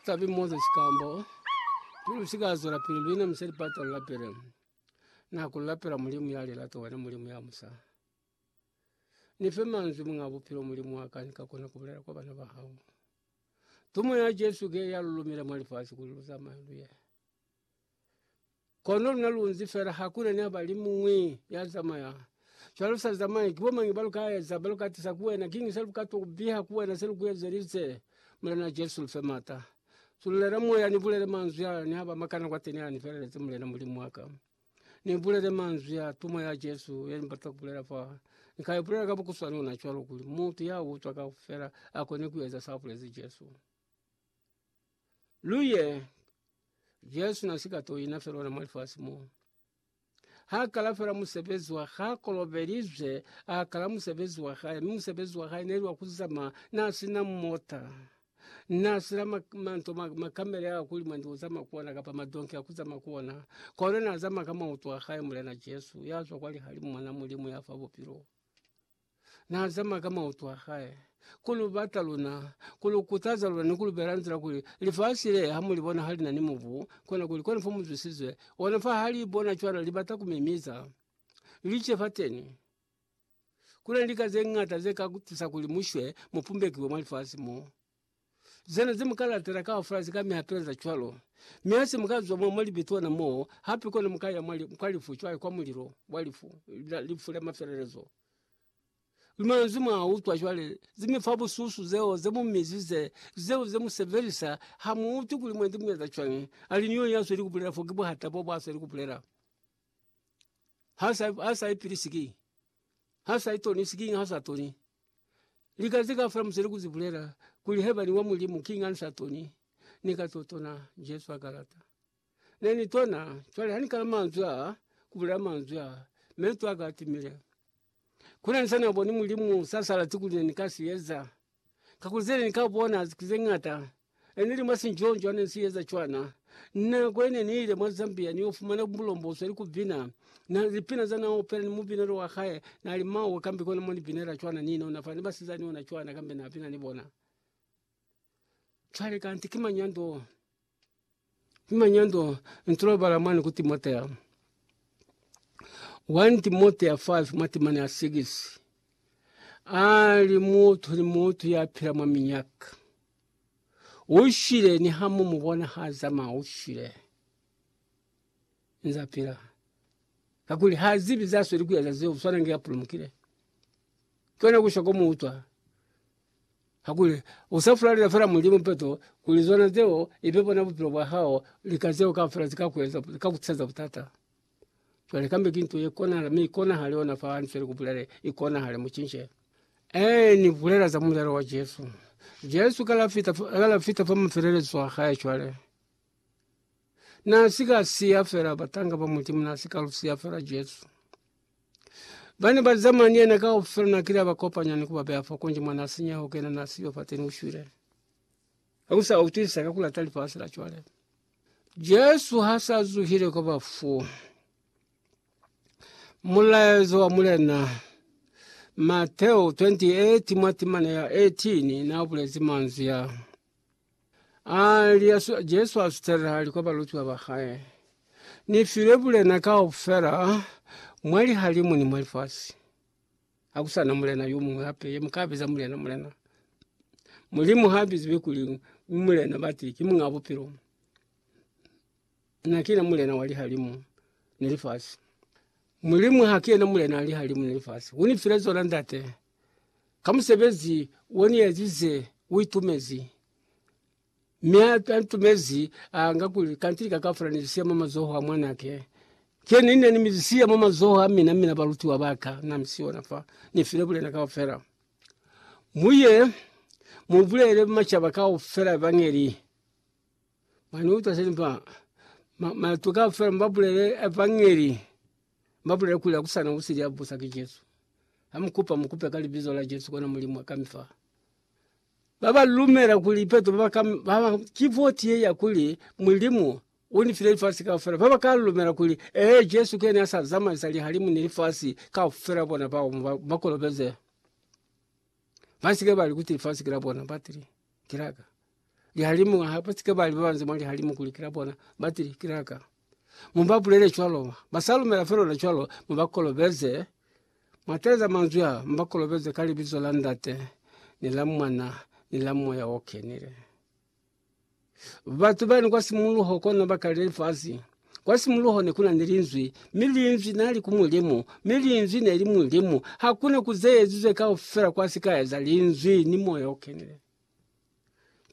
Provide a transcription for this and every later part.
Tabi moze shikambo Pilu shika zwela pilu lwine mseli pata la pele na kula pela mulimu yale la towena mulimu ya musa. Ni fe manzwi mwa bupilo mulimu wa ka nika kona ku bulela kwa bana ba hao. Tumo ya Jesu ke ya lulumile mwa lifasi kuli lu zamaye luye. Kono luna lunzi fela hakuna niaba limuñwi ya zamaya. Cwale usa zamayi, kibo mañi baluka eza, baluka tiza ku wena, kiñi se lukatwa ku biha ku wena se luku ezelize? Mulena Jesu, lufe mata. Sunulela moya, ni bulele manzwi a, ni haba makana kwateni a, ni feleleze, Mulena Mulimu waka. Ni bulele manzwi a, tumo ya Jesu ye Ni bata ku bulela fa. Ni ka ibulela ka bukuswani ona cwalo, kuli mutu ya utwa kaufela akone ku eza sa bulezi Jesu. luye Jesu na si ka to ina fela ona mwa lifasi mo. Ha kala fela musebezi wa ha kolobelizwe, a kala musebezi wa hae, mi musebezi wa hae neli wa kuzama na sina mota na sina manto makamele a kuli mwendi uzama kuona kapa madonki a kuzama kuona kona na zama ka mauto a hae mulena Jesu ya zwa kwa lihalimu mwana mulimu ya fa bupilo. Na zama ka mautu a hae ku lu bata luna, ku lu kutaza luna, ni ku lu bela nzila kuli lifasi le ha mu li bona ha li na ni mubu, kona kuli kona fa mu zwisize ona. Fa ha li bona cwalo, li bata ku mimiza lice fateni. Ku na ni lika ze ñata ze ka tusa kuli mu shwe, mu pumbekiwe mwa lifasi mo. Zena ze mu ka latela kaufela ze ka mi hateleza cwalo. Mi ha se mu ka zwa mo mwa libe tona moo, hape kono mu ka ya mwa, kwa lifu, cwale kwa mulilo wa lifu, la, lifu la mafelelezo. Luna nze mwa utwa cwale, ze mi fa bususu zeo ze mu mizize, zeo ze mu sebelisa, ha mu utwi kuli mwendi mu eza cwañi. Ali ni yo ya sweli ku bulela fo, ki buhata bo bwa sweli ku bulela. Ha sa, ha sa ipilisi ki, ha sa itonisi, kiñi ha sa toni? Lika zika fula musele kuzi bulela kuli heba ni wa mulimu king ansa toni nika totona Jesu akalata neni tona chwale hani kala manzwa kubula manzwa mentwa katimile kule nsana boni mulimu sasala tuku leni kasi yeza kakuze ni kabona zikuze ngata Ene ni mwa sinjonjo ane si eza cwana. Nako ine ni ile mwa Zambia ni yo fumana bulomboswa ni ku bina na lipina za na opela ni mubinelo wa hae na li mawe kambe kona mo ni binela cwana ni inona fa ni basizani ona cwana kambe na bina ni bona. Cwale kanti ki mañi ya ndo? Manyando ntulobala mwani ku Timotea, 1 Timotea 5 matimani a 6 ali mutu ni mutu ya pila mwa minyaka ushile ni hamu mubona ha zama ushile nza pila kakuli ha zibi za sweli kuyaza zeo swana nge apulumukile kyona kusha ko muutwa Kakuli usa fulalela fela Mulimu peto, kuli zona zeo ibe bona bupilo bwa hao, lika zeo kaufela zika kueza, zika kutiseza butata. Cwale kambe ki nto ye konahala, mi ikonahale ona fa ni file kubulele, ikonahale, mucince. Ee, ni bulela za mulelo wa Jesu. Jesu kala fita, kala fita fa mafelelezo a hae cwale. Na si ka siya fela batanga ba Mulimu, na si ka lu siya fela Jesu. Ba ne ba zamana ni yena kaufela, na kile a ba kopanya ni ku ba beya fa konji mwa na sinyeho kena, na siyo fateni u shwile. Ha ku sa utwisisa ka ku lata lifasi la cwale. Jesu ha sa zuhile kwa bafu, mulaezo wa Mulena Mateo 28 mwa timana ya 18 na bulezi manzwi a. Aali, Jesu asutele hali kwa balutiwa ba hae, Ni file bulena kaufela mwa lihalimu ni mwa lifasi. Hakusana mulena yo muñwi hape ye muka biza mulena, mulena. Mulimu ha biziwi kuli u mulena, bati ki Muñ'a Bupilo. Na kina mulena wa lihalimu ni lifasi. Mulimu ha ki yena mulena wa lihalimu ni lifasi. U ni file zona, Ndate. ka musebezi woniyezize uitumezi. Mi antumezi anga kuli, Kanti lika kaufela nilisiya mwa mazoho a Mwanake. Kye nine nine nimilisiya mwa mazoho amina, mina balutiwa baka namisiona fa nifile bulena kaufela. Muye mubulele mashaba kaufela Evangeli. Mwaniuta seni fa? Matu kaufela mubabulele Evangeli. Mabulele kuli akusana usili ya busa ki Jesu. Ha mukupa, mukupe ka libizo la Jesu kona Mulimu a kami fa. Baba lumela kuli ipeto baba ka baba ki voti ye ya kuli Mulimu uni file lifasi kaufela. Baba ka lumela kuli ee Jesu kene asa zamaisa lihalimu ni lifasi kaufela bona bao bakolobeze. Basike bali kuti lifasi kila bona batili kilaka. lihalimu ha ba sike ba li ba banze mwa lihalimu kuli kila bona ba tili kilaka mu ba bulele cwalo ba sa lumela felo na cwalo mu ba kolobeze mwa teleza manzwi a mu ba kolobeze ka libizo la Ndate ni la Mwana ni la Moya o Kenile. Batu bani kwa simuluho kona ba kale lifazi kwa simuluho ne kuna ni linzwi mi linzwi na li ku mulimu mi linzwi ne li mulimu ha kuna ku ze ezizwe kaufela kwa sika eza linzwi ni Moya o Kenile.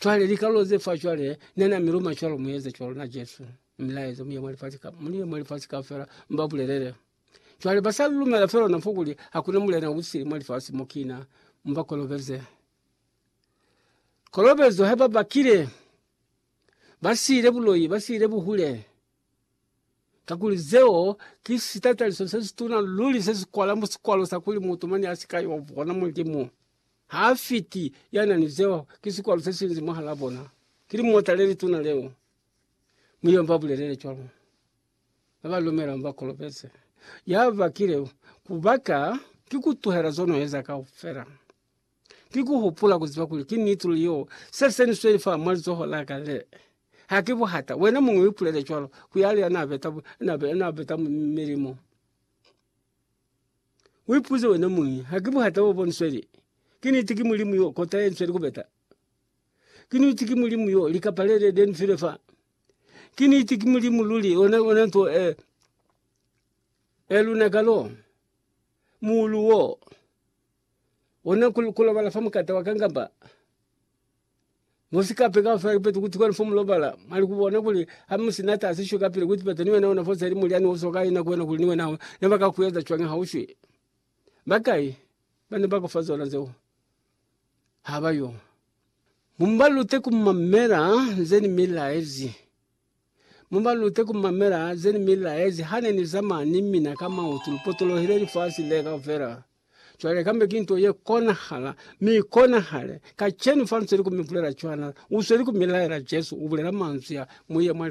Cwale likalolo ze fa cwale ne na mi luma cwalo mu eze cwalo na Jesu mi laeza mu ye mwa lifasi ka mu ye mwa lifasi kaufela mu ba bulelele. Cwale ba sa lumela fela na fo kuli hakuna mulena u sili mwa lifasi mo kina mu ba kolobeze. Kolobezo ha ba bakile ba siile buloi, ba siile buhule. Kakuli zeo ki sitataliso sesituna luli sesikwala mu sikwalo sa kuli mutu mane asika yo bona Mulimu. Ha fiti yana ni zeo ki sikwalo sesinzi mwahalaa bona, ki limota lelituna leo. Muyomba abulelele cwalo, na ba lumelango bakolobeze. Yabakile kubaka ki kutuhela zono eza kaufela. Ki ku hupula ku ziba kuli ki niti luli yo se se ni sweli fa mwa lizoho la ka le. Ha ki buhata, wena muñwi u ipulele cwalo, ku yali ya n'a beta, n'a be, n'a beta milimu. U ipuze wena muñwi, Ha ki buhata bo bo ni sweli? Ki niti ki Mulimu yo, kota ye ni sweli ku beta? Ki niti ki Mulimu yo, likapa le le, le ni file fa? Ki niti ki Mulimu luli, ona, ona nto e, e lunaka lo, muulu wo? Ona ku, kulobala fa mukata wa kangamba musikape kaufela kipeto kuti kwenu fo mulobala mwali kubona kuli hamusi na tasi shwe kapili kuti peto ni wena una fose ili mulyani usoka ina kwena kuli ni wena ho ne ba ka kueza cwani ha ushwi bakai bane ba kufa zona zeo ha bayo mumbalute kumamela nzeni milaezi. Mu ba lute ku mamela ze ni mi laezi ha ne ni zamaya ni mina ka mautu. Lu potolohile lifasi le kaufela. Cwale kambe ki nto ye konahala, mi i konahale kacenu fa lu sweli ku mi bulela cwana. U sweli ku mi laela. Jesu u bulela manzwi a, Mu ye mwa lifasi.